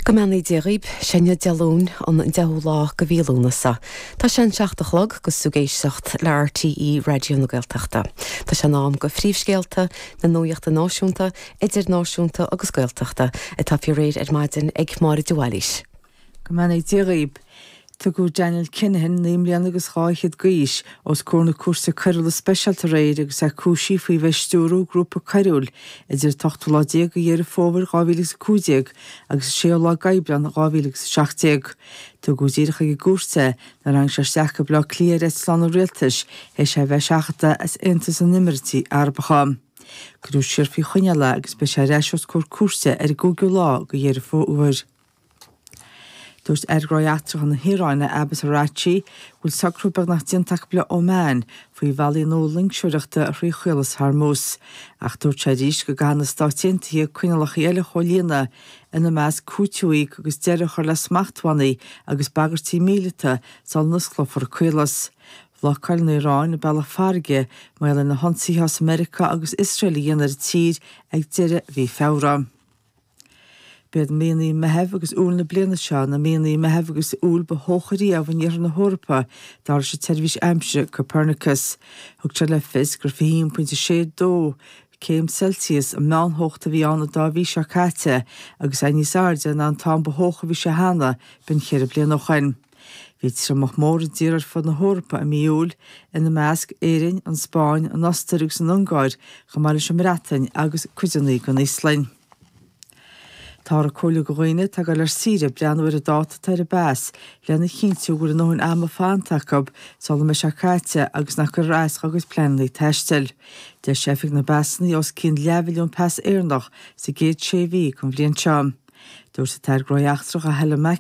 Go mbeannaí Dia dhaoib, sé inniu Dé Luain an deichiú lá de mhí Lúnasa. Tá sé an seacht a chlog agus tú ag éisteacht le RTÉ Raidió na Gaeltachta. Tá sé in am go phríomhscéalta na nuachta náisiúnta, idirnáisiúnta agus Gaeltachta, atá faoi réir ar maidin ag Máire de Bhailís. Go mbeannaí Dia dhaoib. Tugadh Daniel Kinahan, naoi mbliana agus dhá fhichead d'aois, os comhair na Cúirte Coiriúla Speisialta aréir agus é cúisithe faoi bheith ag stiúradh grúpa coiriúil idir an t-ochtú lá déag de Dheireadh Fómhair dhá mhíle agus a cúig déag agus an séú lá d'Aibreán dhá mhíle agus a seacht déag. Tugadh díreach chuig an gCúirt é nuair a tháinig sé isteach go Baile Átha Cliath ar eitleán an Rialtais théis é bheith eiseachadta as Aontas na nÉimíríochtaí Arabacha. Cuireadh siar faoi choinneáil é agus beidh sé ar ais os comhair cúirte ar an gcúigiú lá de Dheireadh Fómhair. Dúirt Aire Gnóthaí Eachtracha na hIaráine, Abbas Araghchi, go bhfuil socrú beagnach déanta acu le Óman faoi bhealaí nua loingseoireachta thrí Chaolas Hormuz, ach dúirt sé arís go gcaithfidh na Stáit Aontaithe coinníollacha eile a chomhlíonadh, ina measc cúiteamh a íoc agus deireadh a chur le smachtbhannaí agus bagairtí míleata sula n-osclófar Caolas. Bhlocáil an Iaráin an bealach farraige mar gheall ar na hionsaithe a thosaigh Meiriceá agus Iosrael a dhéanamh ar an tír ag deireadh mhí Feabhra. B'iad míonna Meithimh agus Iúil na bliana seo na míonna Meithimh agus Iúil ba theocha riamh in iarthar na hEorpa, dar leis an tseirbhís aimsire Copernicus. Thug siad le fios gur 21.62 céim Celsius an meántheocht a bhí ann an dá mhí seo caite, agus é níos airde ná an t-am ba theocha a bhí sé cheana, b'in ceithre bliana ó shin. Bhí triomach mór i dtíortha ar fud na hEorpa i mí Iúil, ina measc, Éirinn, an Spáinn, an Ostair agus an Ungáir, chomh maith leis an mBreatain agus codannaí den Íoslainn. Táthar ag comhairliú go dhaoine atá ag dul ar saoire breathnú ar an dáta atá ar a bpas lena chinntiú go bhfuil a ndóthain ama fanta acu sula mbeidh sé caite agus nach gcuirfear as dá gcuid pleananna taistil. D'eisigh Oifig na bPasanna os cionn leathmhilliún pas Éireannach sa gcéad sé mhí den bhliain seo. Dúirt an tAire Gnóthaí Eachtracha Helen